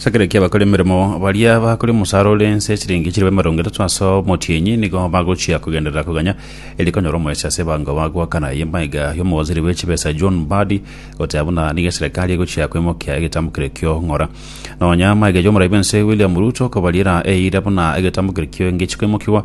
Ase ekero ki'abakora emeremo baria bakore omosara ore ense chiringi chilifu emerongo etato ase omotienyi nigo bagochia kogenderera koganya erio konyora omorecha ase ebango bagoakana. Eye maiga y'omowaziri bwe chibesa John Mbadi goteba buna nigo eserekari egochia kwemokia egetamokero ekio ng'ora. Nonya maiga y'omoraia bw'ense William Ruto okobariera eira buna egetamokero ekio engechi kwemokigwa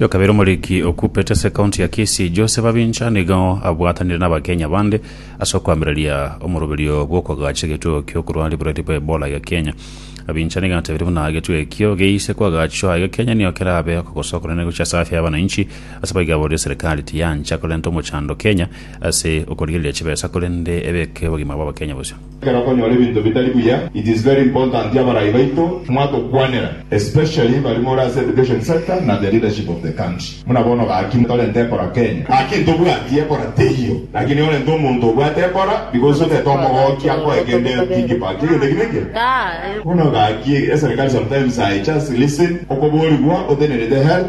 Yo kabere omoriki okupete ase county ya Kisii Joseph Abincha nigo abwatanire n'Abakenya bande ase okoamereria omoroberio bw'okoagacha egetugo ki'okorwania oborwaire bwa Ebola iga Kenya. Abincha nigo atebirie buna egetugo ekio geise koagachwa iga Kenya nigo kerabe okogosa okonene gochia ase afya y'abananchi ase abaigaboria serikali tiyancha korenta omochando Kenya ase okorigereria chibesa korende ebeke obogima bw'Abakenya bosio. Ekero okonyora ebinto bitari buya it is very important abarai baito mwatokwanera especially baria more ase education sector na the leadership of the country buna bono gaki torente ekora Kenya gaki ntobwati ekora teiyo gaki nigo orente omonto obwate ekora because otete omogoki akoe kende thinki part egento ki neke bono gaki eserikali sometimes I just listen okoborigwa otenerete health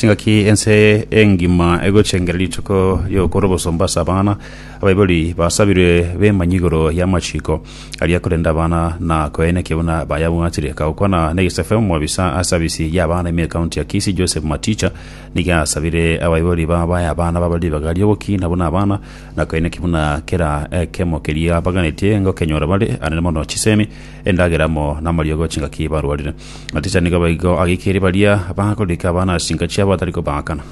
Chingaki ense engima egochengera rituko ri'ogokora obosomba ase abana, abaibori basabirwe bemanywe igoro y'amachiko aria korenda abana na koyainakia buna bayabwatire. Agokwana n'egesaku omobisa ase sabisi y'abana ime ekaunti ya Kisii Joseph Maticha nigo asabire abaibori ba baye abana babe ribaga ri'ogokina buna abana na koyainakia buna kera ekemo keria baganetie ngokenyora bare, arende mono chisemi, endagera amo namariogo chingaki barwarire. Ticha nigo baigo ageikirie baria bagorika abana ase chinka chiabo atari kobaakana.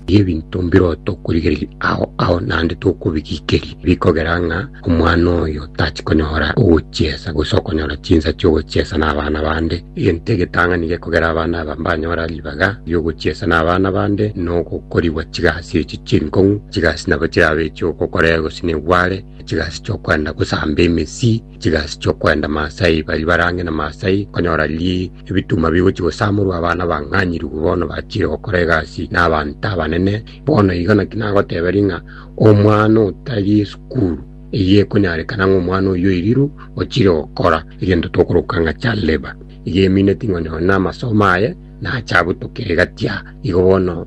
Erio ebinto mbirobwo tokorigereria ao ao naende tokobigikeria, bikogera ng'a omwana oyo tachi konyora ogochiesa, gose okonyora chinsa chi'ogochiesa nabana bande. Egento egetang'ani gekogera abana aba mbanyora ribaga ri'ogochiesa nabana bande nogokorigwa chigasi echi chinkong'u. Chigasi nabo chirabe echi'ogokorea egosina egware, chigasi chi'okwenda gosamba emesii, chigasi chiokwenda Maasai, baria barange na Maasai konyora ri ebituma bigochi gosamorwa abana bang'anyiriwe bono bachire gokora egasi na abanto abanene. Bono igo naki nagoteberia ng'a omwana otari esukuru eyio ekonyarekana ng'a omwana oyio oiriru ochire gokora egento tokoroka ng'a child labour. Igo emineti ng'o nyonye na amasomo aye nache abutokire gati aa. Igo bono